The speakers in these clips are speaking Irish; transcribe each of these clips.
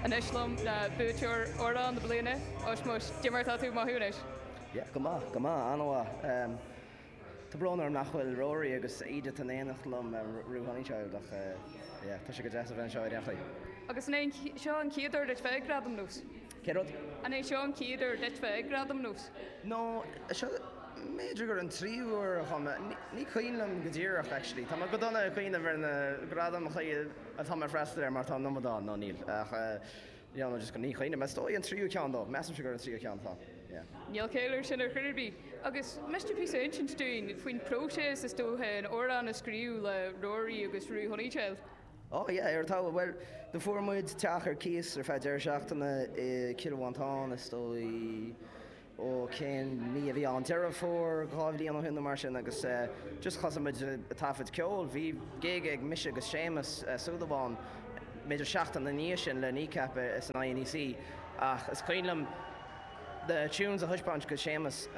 Anois liom le buaiteoir Amhrán na Bliana, Ushmush, cad é mar atá tú ag mothú anois? Yeah, go maith, go maith, an-mhaith. Tá brón orm nach bhfuil Rory agus Edith in éineacht liom Roo Honeychild ach yeah, tá sé go deas a bheith anseo i Reachraidh. Agus an é seo an chéad uair duit bheith ag Gradaim Nós? Cén rud? An é seo an chéad uair duit bheith ag Gradaim Nós? No, seo, b'fhéidir gur an tríú uair dhom. Ní cuimhin liom go díreach, actually. Tá mé go dona ag cuimhneamh ar na gradaim chaoi atá mé ag freastal air mar tá an iomad ann, nó níl, ach yeah, nó just ní chuimhnim. Is dóigh an tríú ceann, ó, measaimse gur an tríú ceann atá, yeah. Níl caill air sin ar chor ar bith. Agus miste píosa a insint dúinn faoin próiséas, is dócha, an amhrán a scríobh le Rory agus Roo Honeychild? Oh yeah, ar talamh. Bhuel, eh fuair muid teach ar cíos ar feadh deireadh seachtaine i Cill Mhantáin, is dóigh, ó cén mí a bhí ann, Deireadh Fómhair dhá bhliain ó shin nó mar sin agus eh just thosaigh muid a' taifead ceol, bhí gig ag mise agus Séamus Súilleabháin b'fhéidir seachtain ina dhiaidh sin le Kneecap san INEC ach is cuimhin liom, Tunes a thaispeáint do Séamus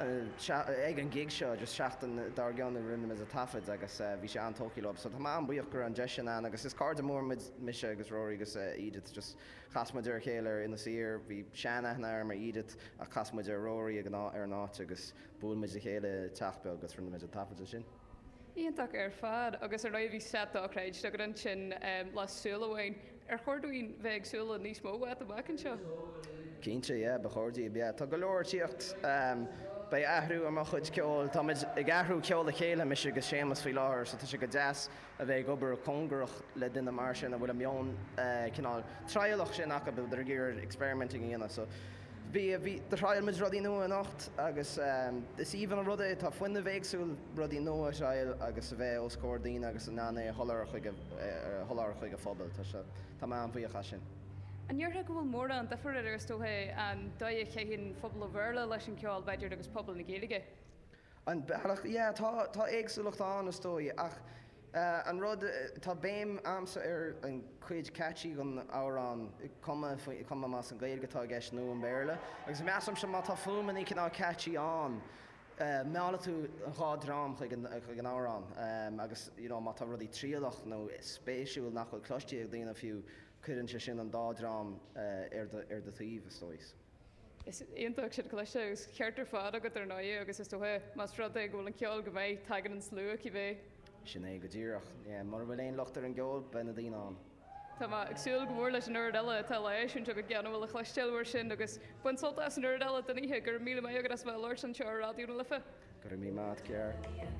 ag an gig seo agus seachtain dár gcionn a rinne muid an taifead agus bhí sé an-tógtha leo. So tá mé an-buíoch go raibh an deis sin ann agus is cairde mór muid, mise agus Rory agus Edith just chas muid ar a chéile ar Inis Oírr, bhí sean-aithne a'm ar Edith ach chas muid ar Rory ag an áit, ar an áit agus bhuail muid le chéile i teach beag agus rinne muid an taifead ansin. Iontach ar fad agus ar ndóigh bhí seit dochreidte agat ansin, le Súil Amháin. Ar chóir dúinn bheith ag súil le níos mó uait amach anseo? Cinnte, yeah, ba chóir daoibh, yeah. Tá go leor tíocht. Beidh athrú ar mo chuid ceoil. Táimid ag athrú ceol a chéile, mise agus Séamas, faoi láthair, so tá sé go deas a bheith ag obair cóngarach le duine mar sin a bhfuil an meon cineál trialach sin acu, a bhfuil ag iarraidh experimenting a dhéanamh, so. Bhí, bhí, do thriail muid rudaí nua anocht agus is aoibhinn an rud é, tá fuinneamh éagsúil, rudaí nua a thriail agus a bheith os comhair daoine agus in ann é a sholáthar chuig a, a sholáthar chuig an phobal. Tá sé, tá mé an-bhuíoch as sin. An ndéarfá go bhfuil mórán difir idir, is dócha, an dóigh a chaitheann pobal an Bhéarla leis an gceol, b'fhéidir, agus pobal na Gaeilge? An bealach, yeah, tá, tá éagsúlacht ann is dóigh ach eh, an rud, tá béim a'msa ar an cuid catchy dhon amhrán, cuma faoi, cuma más an Gaeilge atá i gceist nó an Béarla agus measaimse má tá fuaimeannaí cineál catchy ann eh, meallfaidh tú an dhá dream chuig an, chuig an amhrán em agus you know má tá rudaí trialach nó spéisiúil nach bhfuil cloistí ag daoine fiú cuireann sé sin an dá dream eh, ar do, ar do taobh is dóigh. Is iontach sin a chloisteáil, agus ceart ar fad agat ar ndóigh, agus is dócha, más rud é go bhfuil an ceol go maith, tagann an slua cibé. Sin é go díreach. Mura bhfuil aon locht ar an gceol, beidh na daoine ann. Tá mé ag súil go mór leis an oiread eile atá le heisiúint agat gan a bhfuil le cloisteáil mar sin, agus bain sult as an oiread eile den oíche. Go raibh míle maith agat as bheith ag labhairt anseo ar Raidió na Life. Go raibh míle maith a't, Ger.